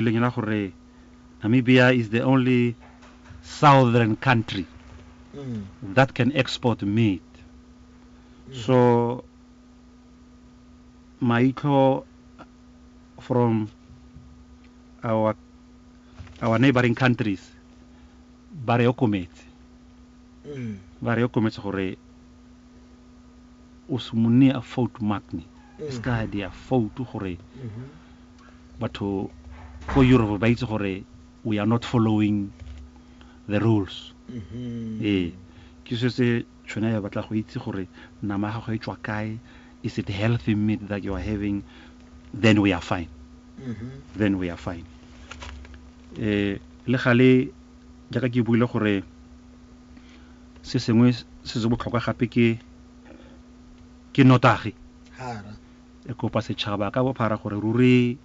Lenyalo la gore Namibia is the only southern country that can export meat. So maitlho from our our neighboring countries ba re okometse ba re okometse gore o se monni a foutu makni se ka di a foutu gore Batho ko Europe ba itse gore we are not following the rules. Ee, ke se se tshwena ya batla go itse gore nama ya gago e tswa kae, is it healthy meat that you are having, then we are fine. Then we are fine. Eh, le gale jaaka ke buile gore se sengwe se se botlhokwa gape ke ke notagi. Hara. Re kopa setšhaba ka bophara gore ruri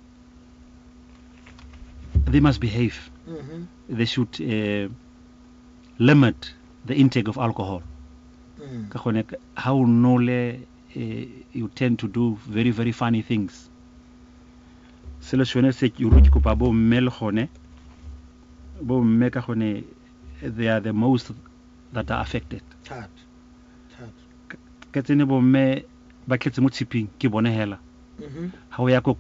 they must behave. Mm-hmm. They should uh, limit the intake of alcohol. Mm. Ka gone ha o nole eh, you tend to do very very funny things. Selo sone se ke ruri ke kopa bo mme le gone bo mme ka gone they are the most that are affected. Thata. Thata. Ka tsene bo mme Ba tletse mo tshiping, ke bone hela. Ha o ya ko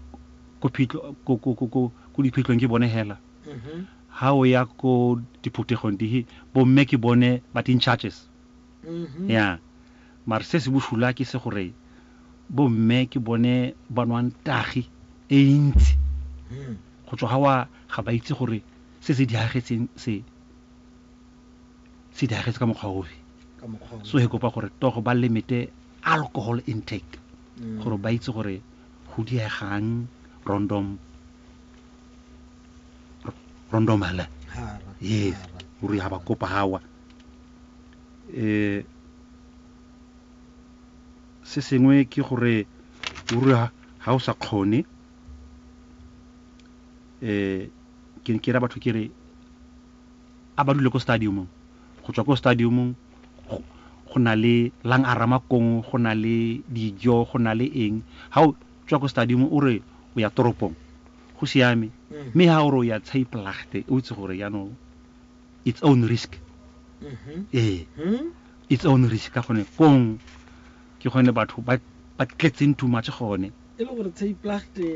diphitlhong, ke bone hela. Ha o ya ko diphuthegong, dihe, bomme ke bone ba di in charges. Ya. Mare se se boshula ke se gore bomme ke bone ba nwang tagi e ntsi. Go tswa ha wa, ga ba itse gore se se diragetseng se. se diragetse ka mokgwa ofe ka mokgwa o so he kopa gore togo ba limite alcohol intake gore ba itse gore go diegang rondom rondom hela hara yes hara. gore ha ba kopa hawa eh se sengwe ke gore gore ha- ha o sa kgone eh ke ke ra batho ke re a ba dule ko stadiumong, go tswa ko stadiumong go na le lang a ramakong, go na le dijo, go na le eng, ha o tswa ko stadiumong o re o ya toropong go siame, mme ha o re o ya Tsheipelachte o itse gore jaanong its own risk, ee its own risk ka gone kong ke gone batho ba ba tletseng too much gone. E le gore Tsheipelachte.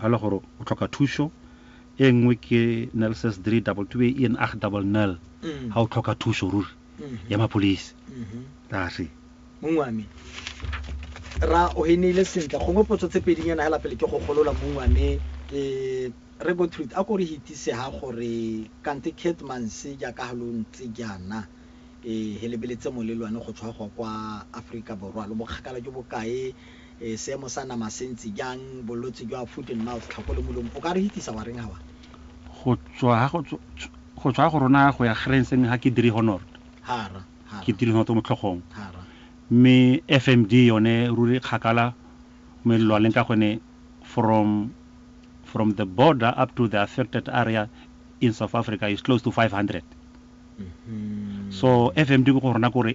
Ha e le gore o tlhoka thuso e nngwe ke nels's three double two e en ag double nel mm. ha o tlhoka thuso ruri mm-hmm. ya mapholisi tase mm-hmm. mong wa me ra o e neile sentle gongwe potso tse pedinyana hela pele ke go golola mong wa me eh, re go truth a ko re hitise ha gore kante catmans jaaka ha lo ntse jaana um he lebeletse molelwane go tshwa go kwa aforika borwa lo bokgakala jo bokae E, seemo sa nama se ntse jang? Bolwetse jwa foot and mouth, tlhako le molomo, o ka re hitisa wa reng ha wa? Go tswa ha go go tswa go rona go ya Grens mme ga ke dire Honord. Ha ra, ha ra. Ke dire Honord mo tlhogong. Ha ra. Mme FMD yone ruri kgakala mo e lwaleng ka gone from from the border up to the affected area in South Africa is close to 500. So FMD go go rona kore